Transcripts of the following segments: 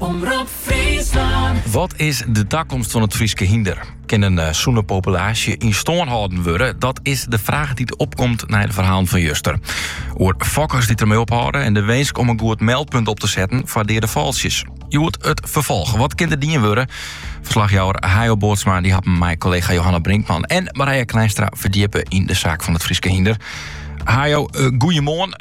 Omrop Fryslân. Wat is de takomst fan it Fryske hynder? Kin in eh, sûne populaasje yn stân hâlden wurde? Dat is de fraach dy't opkomt nei de ferhalen fan juster. Oer fokkers dy't dermei ophâlde en de winsk om in goed meldpunt op te setten foar deade fôltsjes. Hjoed it ferfolch. Wat kin der dien wurde? Ferslachjouwer Hayo Bootsma dy hat him mei kollega Johanna Brinkman en Marije Kleinstra ferdjippe yn de saak fan it Fryske hynder. Hayo, uh, eh, goeiemoarn.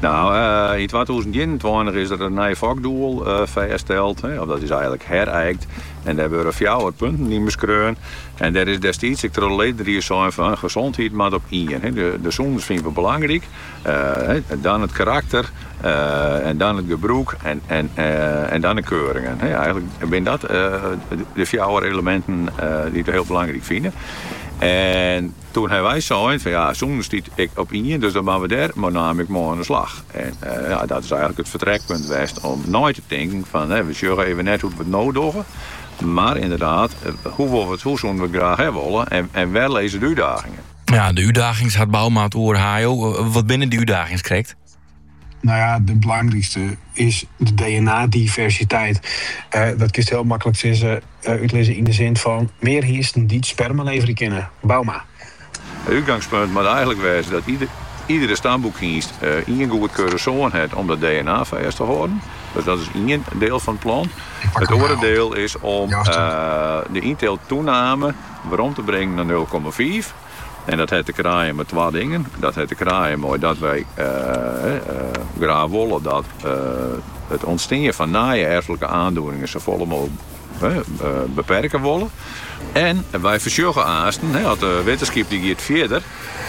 Nou, yn twatûzen ienentweintich is der in nij fokdoel fêststeld, of dat is eigenlik herykt, en dêr hawwe we fjouwer punten yn beskreaun. En dêr is destiids ek troch de ledenried sein fan, gesondheid moat op ien. De sûnens fine we belangryk, dan it karakter, dan it gebrûk en dan de keuringen. Eigenlik binne dat de fjouwer eleminten dy't we hiel belangryk fine. Toen ha wy sein fan ja, sûnens stiet ek op ien, dus dan moatte we dêr mei namme ek mei oan de slach. En ja, dat is eigenlik it fertrekpunt west om nei te tinken fan we sjogge even net hoe't we it no dogge, mar ynderdaad, hoe wolle we hoe soene we it graach ha wolle en wêr lizze de útdagingen? Ja, de útdagings hat Bouma it oer. Hayo, wat binne dy útdagings krekt? Nou ja, de belangrykste is de DNA-diversiteit. Eh, dat kinst heel makkelijk sizze, eh, uitlizzen yn de zin fan mear hynsten dy't sperma levere kinne. Bouma. It útgangspunt moat eigenlik wêze dat ieder, iedere stamboekhynst eh, ien goedkeurde soan hat om dat DNA fêst te hâlden. Dus dat is ien deel fan it plan. It oare deel is om eh, de ynteelttoename werom te bringen naar nul komma fiif. En dat hat te krijen mei twa dingen. Dat hat te krijen mei dat wy graach wolle dat it ûntstean fan nije erflike oandoeningen safolle mooglik beperke wolle. En wy foarsjogge aansten, as de wittenskip dy giet fierder,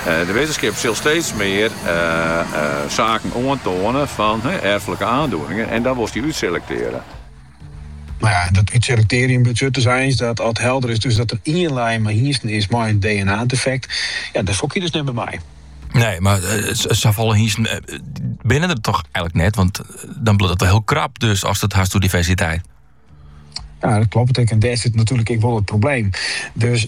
de wittenskip sil steeds mear saken oantoane fan erflike oandoeningen en dan wolst dy útselektearje. Nou ja, dat útselektearjen betsjut eins dat at helder is dus dat der ien line mei hynsten is mei in DNA-defekt. Ja, dêr fokke je dus net mear mei. Nee, maar uh, eh, safolle hynsten eh, binne der toch eigenlik net, want eh, dan bliuwt it wol hiel krap dus ast it hast oer diversiteit. Ja, dat klopt. En dêr sit natuerlik ek wol it probleem. Dus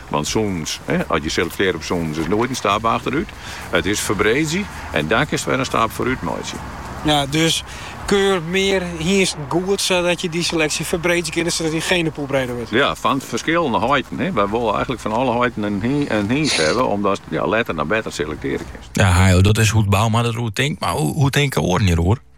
Want sûnens, as je selektearre op sûnens, is noait in stap achterút. It is ferbreedzje en dan kinst wer in stap foarút meitsje. Ja, dus keur mear hynsten goed sadat je dy seleksje ferbreedzje kinne sadat je genepoel breder wurdt. Ja, fan ferskillende heiten. Wy wolle eigenlik fan alle heiten in hynst hawwe omdatst letter nei better selektearje kinst. Ja, Hayo, dat is hoe't Bouma deroer tinkt, mar hoe tinke oaren hjiroer?